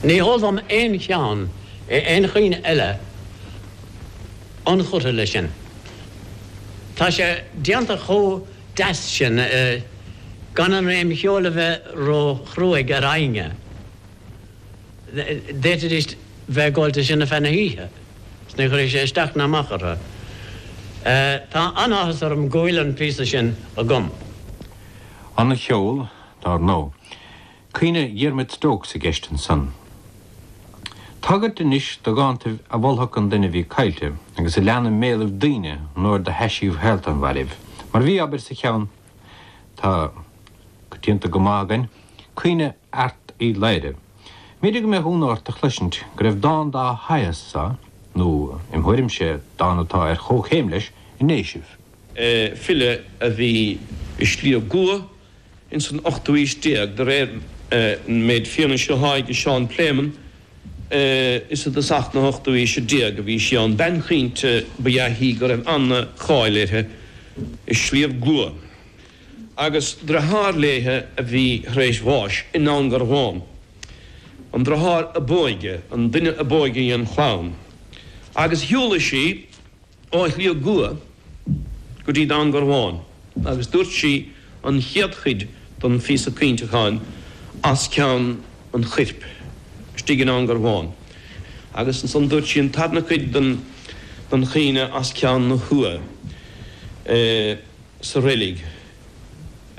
Ní heol dom aon cheann in aon chaoineadh eile inchurtha leis sin. Tá sé déanta chomh deas sin gan an réim cheoil a bheith ró chruaidh ar éinne. D'fhéadfaidís bheith ag gabháil de sin feadh na hoíche 's ní chuirfeadh sé isteach ná amach orthu. Tá an-áthas orm go bhfuil an píosa sin agam. An ceol dar ndó. Caoineadh Dhiarmaid Stokes i gceist ansan. Tagairt anois do dhántaibh a mholfadh an duine a bhí caillte agus a lean i mbéalaibh daoine nuair do thaisíodh shaolta an mhairbh, mar a bhí, abair, sa cheann atá coitianta go maith againn, Caoineadh Airt Uí Laoghaire. B'fhéidir go mbeadh ionadh ort a chloisint go raibh dán dá shaghas anso, nó, im thuairimse, dán atá ar chomhchéim leis, i nDéisibh. file a bhí i Sliabh gCua ins an ochtú aois déag, de réir an méid fianaise atá aige Seán Pléimeann, is i dtosach na hochtú aoise déag a bhí sí ann. Bean chaointe ba ea í go raibh an-cháil uirthi i Sliabh gCua, agus driotháir léithe a bhí tar éis bháis i nDún Garbhán, an driotháir ab óige, an duine ab óige dhen chlann, agus shiúlaigh sí. Ó Shliabh gCua go dtí Dún Garbhán agus dúirt sí an chéad chuid den phíosa caointeacháin as ceann an chuirp istigh i nDún Garbhán agus ansan dúirt sí an tarna cuid den chaoineadh as ceann na h-uaighe sa reilig.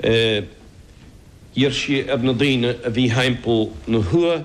D'iarr sí ar na daoine a bhí thimpeall na h-uaighe.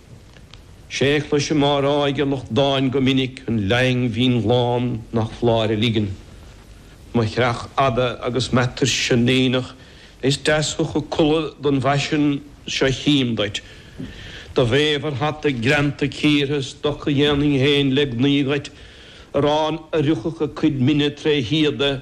Sé chloisim á rá ag lucht dáin go minic an leaghang mhín ghlán nach f'láir a ligean. Mo chreach fhada agus m'atuirse in éineacht is deas thiocfadh culaith don bhfaisean seo chím duit. Do bhéabhar hata greanta cíortha stoca dhéanfainn féin le gnaoi dhuit, arán a rithfeadh a cuid mine tré shíoda,